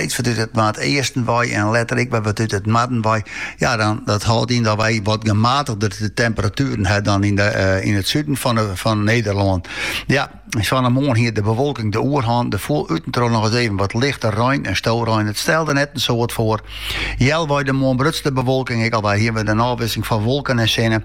steeds wat út it noardeasten wei en letter ek wat út it noarden wei. Ja, dan, dat houdt in dat wij wat gematigder de temperaturen hebben dan in, de, eh, in het zuiden van, de, van Nederland. Ja, van morgen hier de bewolking de oerhand. De voel uitentroon nog eens even wat lichter ruin en stoelruin. Het stelde net een soort voor. Jel bij de morgen brutste bewolking. Ik al bij hier met een afwisseling van wolken en zinnen.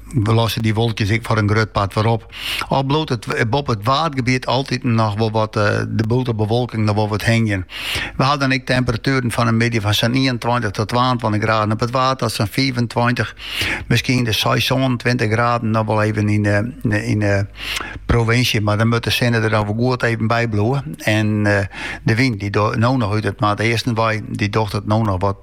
lossen dy wolkjes ek foar in grut part wol op. Al bliuwt it boppe it waadgebiet altiten noch wol wat eh, de bewolking noch wol wat hingjen. We ha dan ek temperatueren fan 'e middei fan sa'n ienentweintich tot twaentweintich graden op it waad tot sa'n fiifentweintich, miskien seis, sânentweintich graden noch wol even yn de, yn de provinsje. Mar dan moat de sinne der dan wol goed even by bliuwe. En eh, de wyn die no noch út it noardeasten wei, die docht it no noch wat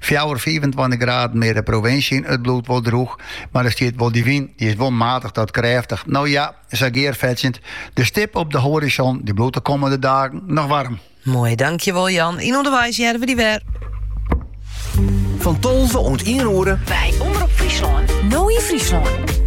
Fjouwer, fiifentweintich graden mear de provinsje yn. It bliuwt wol drûch, mar der stiet wol dy wyn. Dy is wol matich ta krêftich. No ja, sa gearfetsjend. De stip op de horizon dy bliuwt de kommende dagen noch waarm. Moai, dankjewol Jan. Yn Ûnderweis hearre we dy wer. Fan tolve oant ien oere. By Omrop Fryslân. No yn Fryslân.